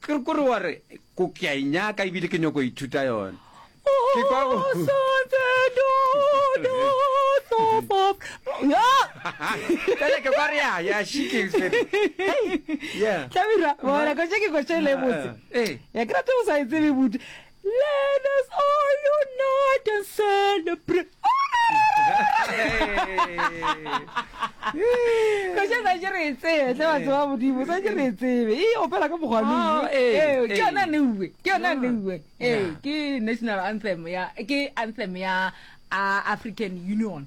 Ke kore wa re ko ke a e nyaka e bile ke nyoko ithuta yone. Ke kwa go Kale ke kwa re ya ya she ke tsere. Yeah. Tabira, bona ko ke ko tšele botse. Eh. Ya ke rata o sa e tsebe buti. Let us all unite and celebrate. Koša sa je re tsebe, tla ba tseba modimo, sa je re tsebe. E opela ka mokgwa le. Oh, eh, eh, ke yona neuwe, ke yona neuwe. Eh, ke national anthem ya ke anthem ya African Union.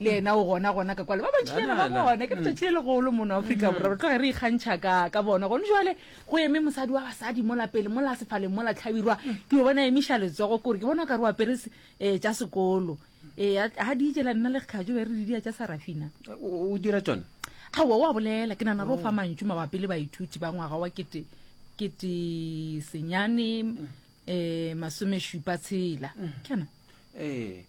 le ena o gona gona ka kwale ba bantšhinyana ba bona ke letšatši le legolo mono aforika mm. borwa re tloge re ikgantšha ka ka bona gone jale go eme mosadi wa basadi mola pele mola sefaleng mola tlhabirwa mm. ke o bona emiša letsogo kore ke bona o ka re o apere um eh, tša sekolo ee eh, ga di ijela nna le kgajo be re di dia tša sarafina o dira tsone gaowa o a bolela ke nana re o fa oh. mantšu mabapi le baithuti ba ngwaga wa kete kete senyane um mm. eh, masomešupa tshela kana ee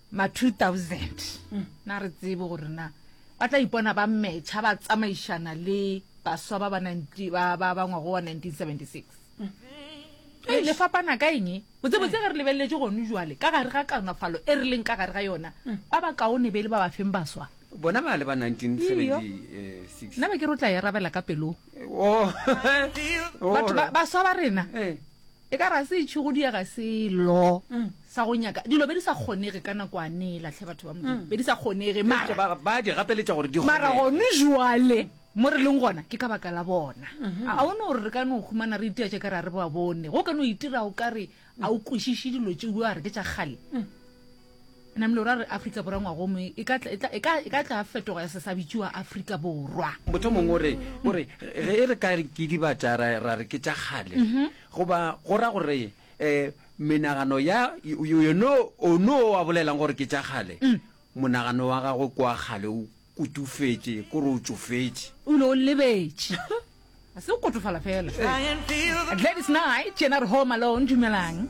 ma 2000 na re tsebe gore na ba tla ipona ba metšha ba tsamaišana le baswa ba bangwago wa 1976 e le fapana ka eng botsebotse ge re lebeleletse gone jale ka gare ga kanofalo e re leng ka gare ga yona ba ba kaone be le ba ba feng baswa bona ba le ba 1976 nna be ke rotla e rabela ka pelong oh. batho baswa ba rena eh. E ka re a se itšhi go diega selo sa go nyaka dilo be di sa kgonege ka nakwane e latlhe batho ba Modimo be di sa kgonege mara Ba ba di gapeletša gore di mara kgone. gone jwale mo re leng gona ke ka baka la bona a o ne gore re ka no humana re itia tše ka re a re ba bone go ka no itira o ka re a o kwešiše dilo tšeo a re ke tša kgale Namile o ra gore Afrika Borwa ngwagomwe e ka tla- e tla- e ka- e ka tla fetogo ya se sa bitšiwa Afrika Borwa. Motho mongwe o re, o re ge e re ka re ke dibatša ra, ra re ke tša kgale, goba go ra gore eh, menagano ya yo- yo- yono ono o a bolelang gore ke tša kgale, monagano wa gagwe ke wa kgale, o kotufetše, ko re o tšofetše. O ile o lebetše. Ga se go kotofala fela. Gladys Knight, yena re Home Alone, dumelang.